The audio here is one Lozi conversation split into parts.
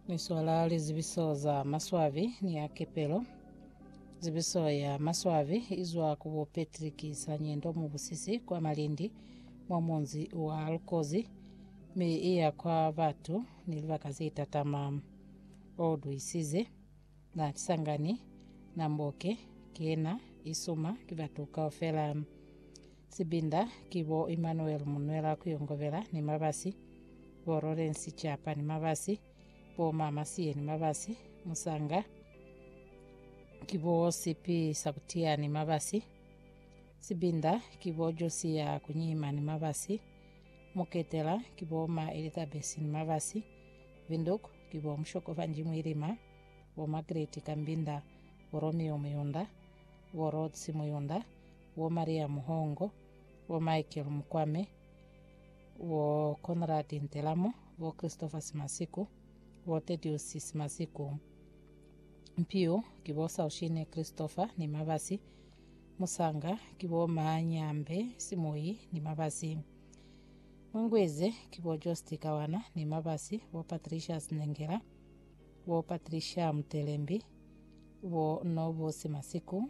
Ni swala lizibiso za maswabi ni ya kepelo. Zibiso ya maswabi izwa ku bo Patrick Sanyendo mu busisi kwa Malindi mwa munzi wa Lukozi mi iya kwa batu ni libaka ze tatama. O duisize na Kisangani, na Mboke, kena isuma ki batu kaufela. Sibinda ki bo Emmanuel Munwela Kuyongobela ni Mabasi, bo Lawrence Chapa ni Mabasi, bo Ma Masiye ni Mabasi, Musanga ki bo Sipi Sakutiya ni Mabasi, Sibinda ki bo Josiya Kunyima ni Mabasi, Muketela ki bo Ma Elizabeth ni Mabasi, Vinduk ki bo Mushoko Vanji Mwilima, bo Margaret Kambinda, bo Romeo Muyunda, bo Rhodes Muyunda, bo Maria Muhongo, bo Michael Mukwame, bo Conrad Ntelamo, bo Christopher Simasiku, bo Tedius Simasiku. Mpiu ki bo Saushine Christopher ni Mabasi. Musanga ki bo Ma Nyambe Simoyi ni Mabasi. Mungwize ki bo Josti Kawana ni Mabasi, bo Patricia Snengela, bo Patricia Mutelembi, bo Nobu Simasiku,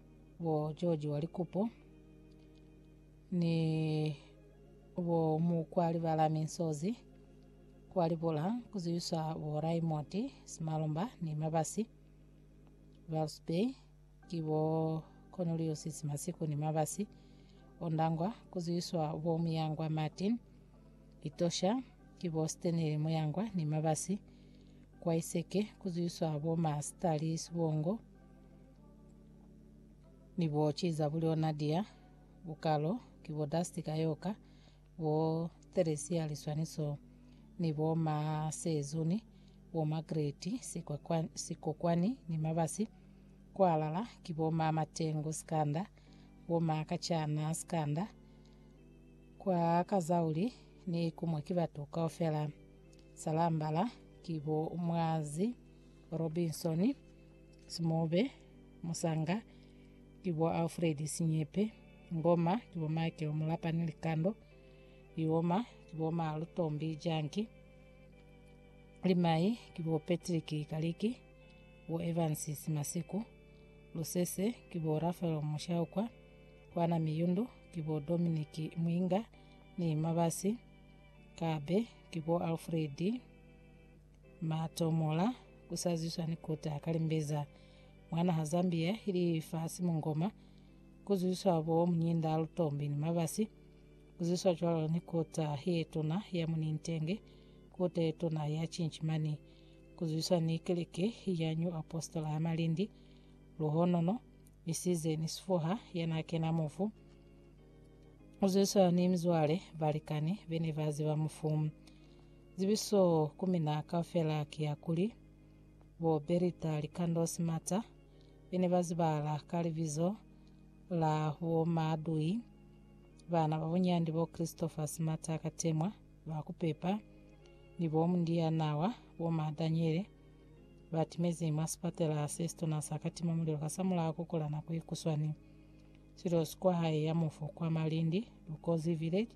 bo George wa Likupo ni bo Mukwali Balami Nsozi kwa Libula kuziwiswa bo Raymond Simalomba ni Mabasi Ralph Bay ki bo Cornelius Simasiku ni Mabasi Ondangwa kuziwiswa bo Muyangwa Martin Itosha ki bo Stanley Muyangwa ni Mabasi kwa Iseke kuziwiswa bo Master Lee Sibongo Ni bo ki za bulyo Nadia, bukalo, ki bo Dusty ka yoka, bo Theresia liswaniso, ni bo ma Sezuni, bo Margaret, sikokwa- sikokwani ni mabasi, kwalala ki bo ma Matengu sikanda, bo ma Kachana sikanda, kwa Kazauli ni kumwe ki batu kaufela, Salambala ki bo Mwazi Robinson, Simobe, Musanga, ki bo Alfred Sinyepe, Ngoma, ki bo Michael Mulapani Likando, Ioma, ki bo Ma Lutombi Janki, Limai, ki bo Patrick Kaliki, bo Evans Simasiku, Lusese, ki bo Rafael Mushaukwa, Kwana Miyundu, ki bo Dominic Mwinga, ni Mabasi, Kabe, ki bo Alfred Matomola kusaziswa ni kuta kalimbeza mwana ha Zambia ili fasi mungoma kuzwiswa bo munyinda lutombi ni mabasi kuzwiswa cwalo ni kuta yetuna ya munintenge kuta yetuna ya chinchimani kuzwiswa ni keleke ya New Apostola ya Malindi luhonono isize ni sifuha yana kena mufu kuzwiswa ni mzwale balikani bene baziba mufu Zibiso ku mina kaufela ki ya kuli, bo Berita Likando Simata be ne ba zibahala ka libizo la bo Maadui, baana ba bunyandi bo Christopher Simata Katemwa, ba ku pepa, ni bo Mundiya Nawa, bo Ma Daniele, ba timezi mwa sipatela se situna sa Katima Mulilo kasamulaho ku kula nako ikuswani. Silo si kwa hae ya mufu kwa Malindi, Lukozi Village,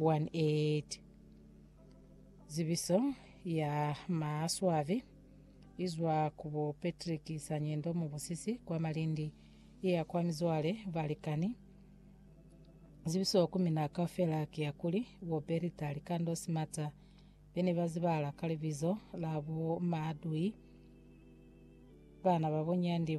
18. Zibiso ya maswabi izwa ku bo Patrick Sanyendo mubusisi kwa Malindi iya kwa mizwale balikani. Zibiso ku mina kaufela kiya kuli bo Berita Likando Simata bene bazibala ka libizo la bo Maadui, bana babo Nyandi